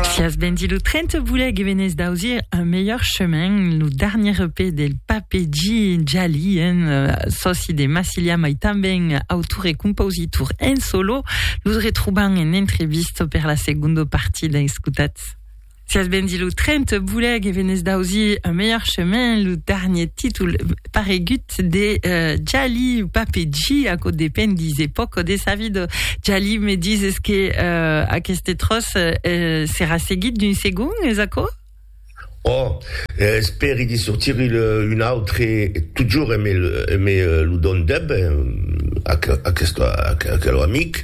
Fias Bendy lo 30 voulait que venez d'ausir un meilleur chemin, le dernier EP del Pape G. Jali, un euh, soci de Massilia, mais também autor et compositor en solo. Nous retrouvons en entrevista per la seconde partie d'Escutats. Fias Bendy lo 30 voulait que venez d'ausir un meilleur chemin, le dernier titre paregut de Jali ou Papeji, aquò depend, dise pòco de sa vida. Jali, me dises que aqueste tròç serà seguit d'un segon, es aquò? Oh, espèri de sortir un autre, totjorn me lo dòn deb, aquelò amic.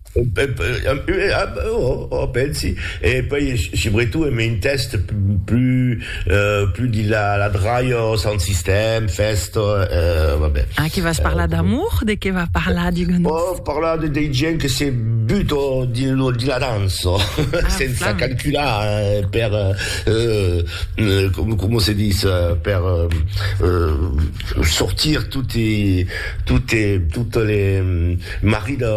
Ò, pensi, e puèi subretot en un tèxt plus de la dralha, sound system, fèsta, va ben. Ah, que vas parlar d'amour? De qué va parlar, digue-nos? Ò, parlar de dei gents que se buta dins la dança, sensa calcular per, coma se ditz, per... sortir toti tote totes les marri de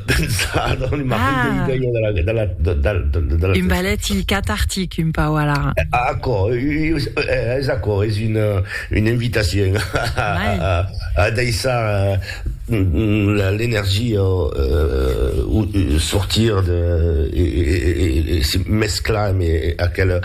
pensar dans les marri ah. de l'idea de la, de la, de, de, de, de la un ballet cathartic un pau alara aquò és aquò és una, une invitacion a, a, a, a deixar l'energia sortir de e se mesclar amb aquela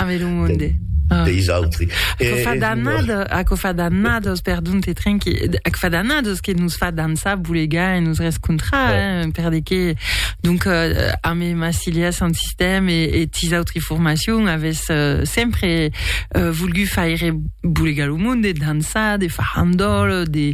deis autri aquò fa d'annadas aquò fa d'annadas perdon te trinqui aquò fa d'annadas que nos fa dansar bolegar e nos rescontrar per de que donc a me ma cilia son sistèm e tis autri formacion avès sempre volgut faire bolegar lo monde dansar de farandòl de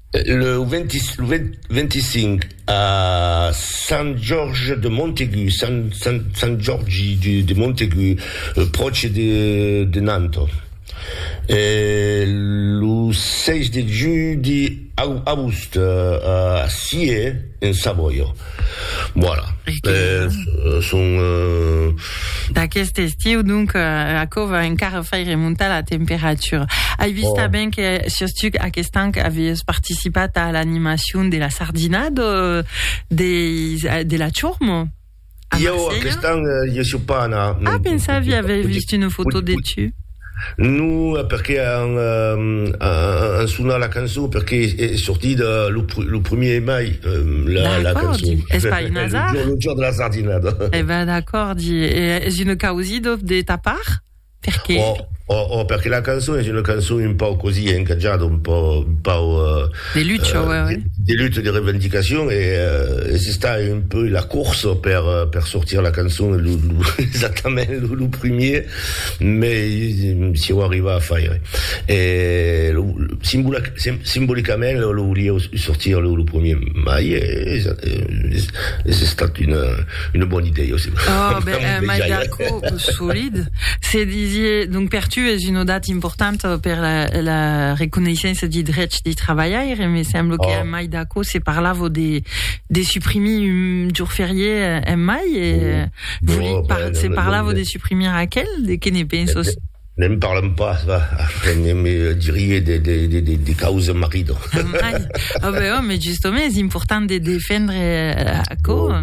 Lo 25 a Sant Jorge de Montaigu, Sant Jorgi de Montaigu, pròche de Nantes. E lo 6 de julhi a Aoust, a Scié, en Savòia. Voilà. Euh, son... Euh... D'aquest estiu, donc, euh, aquò va encara faire remontar la temperatura. Ai vist oh. ben que sos tu aquest an avies participat a l'animacion de la sardina de, de, de la Chormo. Jo aquest an, eh, jo suis pas anat. Ah, pensava, j'avais vist une foto de tu. No, perqué an an sonat la cançon, perqué es sortit lo lo primier de mai, la la cançon. D'acòrdi, es pas un hasard? Lo jorn de la sardinada. E ben d'acòrdi, e es una causidad de ta part? Perqué? Oh, oh, oh, perqué la cançon es una cançon un pauc così encatjada, un pauc, un pauc... De lucha, ouais, ouais. De lucha, de revendicacion, e es estat un peu la corsa per per sortir la cançon lo lo exactament lo primier. Me sieu arribat a faire e lo simbolicament lo lo volieu sortir lo lo premier mai e es estat una una bona idèia aussi. Oh ben mai d'aco solid se disie donc per tu es una data importanta per la la reconeissença de drech de trabalhaire me semblo que en mai d'aco se parlava de de suprimir un jour ferié en mai e Se parlavo de suprimir aquel, de que ne pensos? Ne'n parlam pas, va, après ne me dirie de, de, de, de, de causa marido. Mai. Ah ben, oh, mais justement, és important de defendre euh, aquò.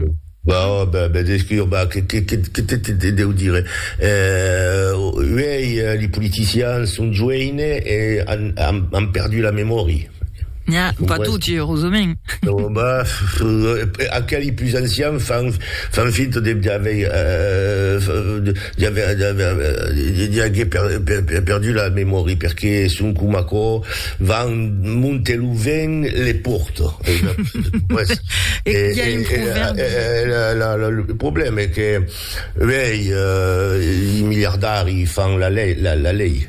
Bah, oh, bah, bah, des que, bah, que, que, que, que te, te, te deu dire? Euh, uèi, eh, li politicians son joeines e han, han, han perdu la memòria. Nha, pas tutti, eurosament. Aqueli pus ancian fan finta de aguer perdu la memòria, perque son coma aquò, van monte lo vent le porta. Lo problèma es que uèi i miliardari fan la lei.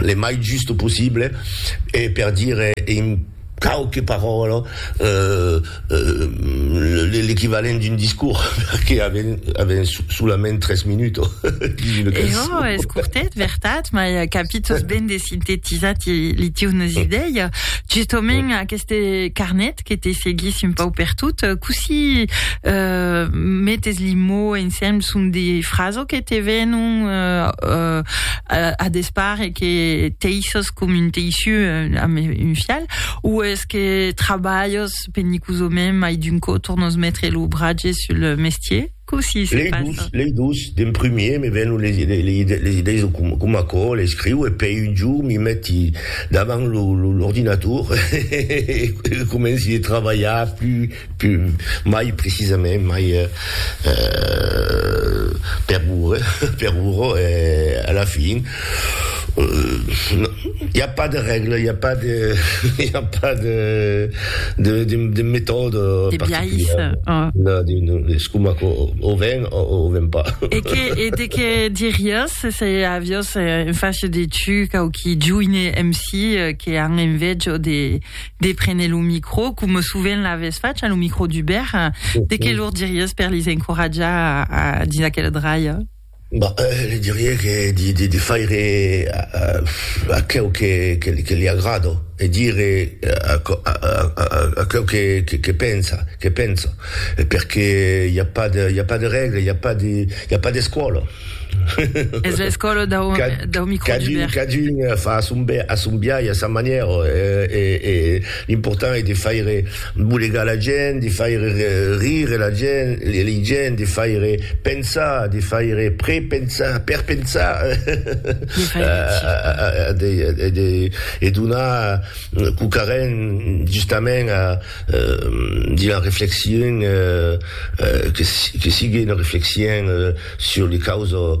le mai just possible e per dire en quauque paròla l'equivalent d'un discors perque avèm solament tres minutos. E jo, es cortet, vertat, mai capitos ben de sintetizar li tieus idèia. Justament aqueste carnet, agradat que te seguissi un pauc per tot. Cossí metes li mots ensems? Son de frases que te venon a despart e que teisses com un teissiu amb un fial? O es que trabalhes penicosament mai d'un còp tornes metre lo bratge sul mestier? Cossí se passa? Lei dus, lei dus, d'en primier me vèn les les idèis de com com aquò l'escriu e pei un jorn mi meti davant lo l'ordinator e comenci de trabalhar plus plus mai precisament mai per ure per uro e a la fin I a pas de règla, i a pas de, i a pas de, de, de, de metòda particulièra. De biais. Es coma que o ven o o ven pas. E que, e de que diriás se aviós en fach de tu quauqui joine MC que an envejo de, de prene lo micro, coma sovent l'avès fach a lo micro d'Hubert, de que lor diriás per lis encoratjar dins aquela draia? Bah, li dirie que de faire aqueu que li agrada e dire aqueu que pensa, que penso, perque i a pas de, i a pas de règle, i a pas de, i a pas d'escòla. Es l'escòla dau microgibèrt. Cadun fa a son biais, a sa manièra e. L'important es de faire bolegar la gent, de faire rire la gent, lei gent, de faire pensar, de faire prepensar, perpensar, e donar quauquarren justament a dire una reflexion que sigue una reflexion sur les causes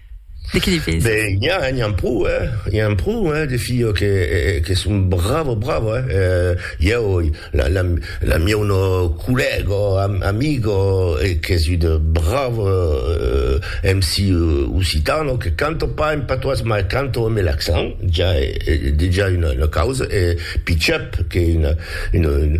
De qui li pesi? Ben, n'i a, n'i an pro, eh? I an pro, eh, de filhos que, que son bravos, bravos, eh? eh ieu, la, la, la mieu no collègo, am, amigo, eh, qu'es un bravo eh, MC occitano, que canto pas en patois, mas canto amb l'accent, ja, eh, dejà una, una causa, eh, Pichep, qu'es una, una, una,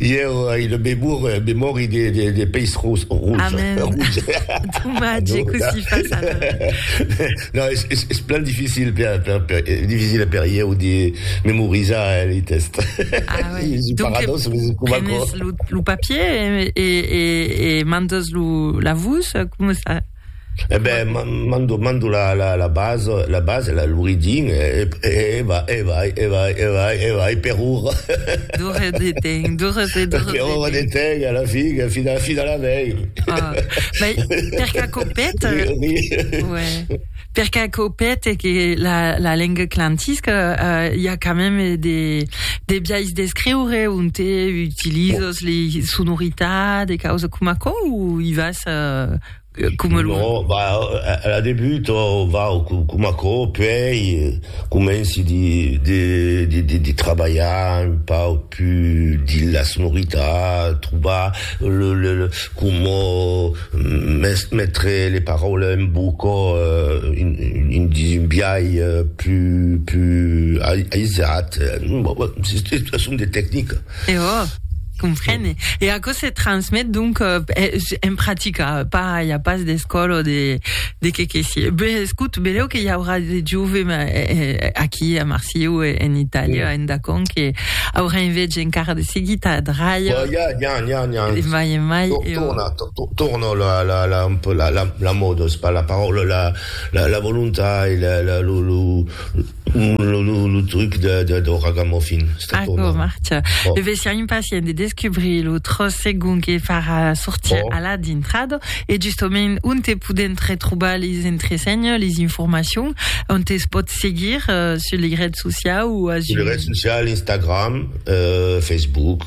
Ieu ai una memòria de peish ros. Amen. Domatge, e cossí fas ara? Non, es plan dificil per ieu de memorizar li test. Ah uei. Es un paradox, mas es coma aquò. Prenes lo papier e mandas la vos? Coma es ça? Eh ben, m'an do, m'an do la la la base, la base, la l'oridin e e e va e vai e vai e vai e vai per ora. Do repetem, do repetem, do repetem. Per ora de temps a la fin, a fina fina la vei. Ah, mai per qu'aquò pète. Ri, ri. Ouais. Per qu'aquò pète que la lenga clantisca, i a quand mème de biais d'escriure onte utilizos lei sonoritats, de causas coma aquò, o i vas coma lo... No, va, a la debut, va, coma aquò, puèi comenci de trabalhar un pauc pus dins la sonoritat, trobar coma... Metre les paraules en boca un dis un biais plus aisat, son des tecniques. E ò, comprene. E aquò se transmet donc en practica, pas i a pas d'escòla o de qué que sié. Ben, escout, beleu que i aurà de jove aquí a Marsieu e en Itàlia, en Dacon, que aurà enveja encara de seguir ta draia. N'i a, n'i a, n'i a. Mai e mai. Torno la la la un peu la la la mòda es pas la paròla la la la volontai la la lo lo lo lo lo truc de de do ragamuffin sta tornant. Aquò marcha. Bon. Deve ser impacient de descubrir lo tròç segon que farà sortir bon. a la dintrada e justament onte podèm retrobar les entresenhas, les informacions, onte es pòt seguir sus li rets sociau o a Zoom? Sus li rets sociau, Instagram, euh, Facebook.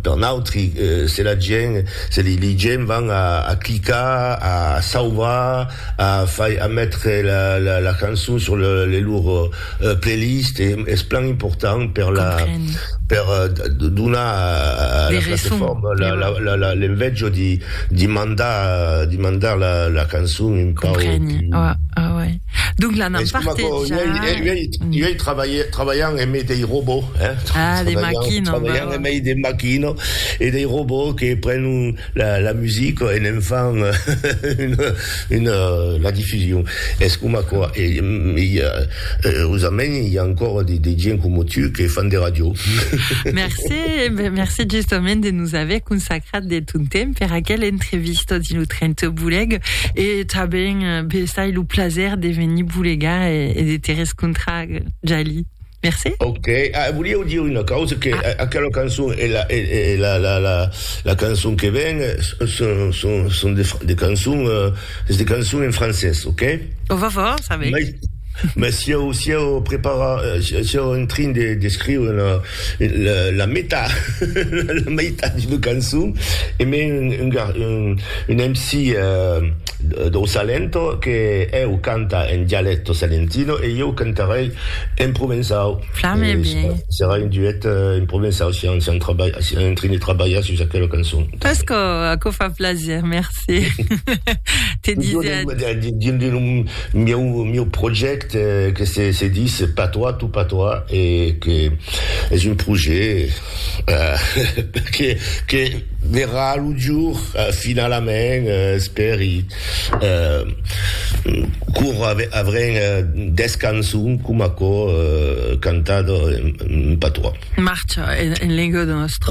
per nautri se la gent se li gent van a clicar a sauvar a fai a metre la cançon sur le lor playlist es plan important per la per donar a la plateforma l'envejo di mandar di mandar la cançon un pauc Donc la n'an partejat. Uei trabalhan en mei dei robots, hein. Ah, de maquino. Trabalhan en mei de maquino e dei robots que prenon la musica e ne'n fan una la diffusion. Es coma aquò. E ausament i a ancòra de gent coma tu que fan de radio. Mercé, mercé justament de nos aver consacrat. Grat de ton temps per aquel entrevista dins lo 30 Boleg e tanben besai lo plaser de venir bolegar e de te rescontrar, Jali. Merci. Ok, ah, volieu dire una causa que ah. aquela cançon e la, e, e la, la, la, la cançon que ven son, son, son de, de cançons, uh, de cançons en francès, ok? On va voir, ça va. Mais, mais si eu, si eu prepara, si eu en train de, de scriure una, la meta la meitat d'una cançon e me un MC dau Salento que eu canta en dialècto salentino e ieu cantarei en provençau serà un duet en provençau si en trini trabalha sus aquela cançon pas que aquò fa plaser merci te disiatz dins lo mieu projècte que se dis patois tout patois e que es un projet que verrà lo jour finalament espèri quora avrem 10 cançons com aquò cantada en patois. Marcha en lenga de nòstra.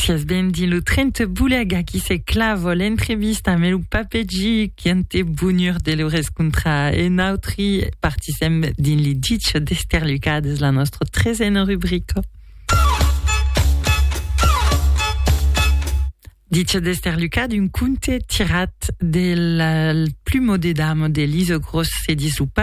Siás ben dins lo tren te boulèc, aquí se clava l'entrevista amé lo papè Gic, qu'en te bonhur de lo rescontrar e nautri partisèm dins li ditz d'Esterlucades, la nòstra tresena rubrica. Ditz d'Esterlucades, un conte tirat del plumo de dama d'Elisa Gros, se ditz lo papè.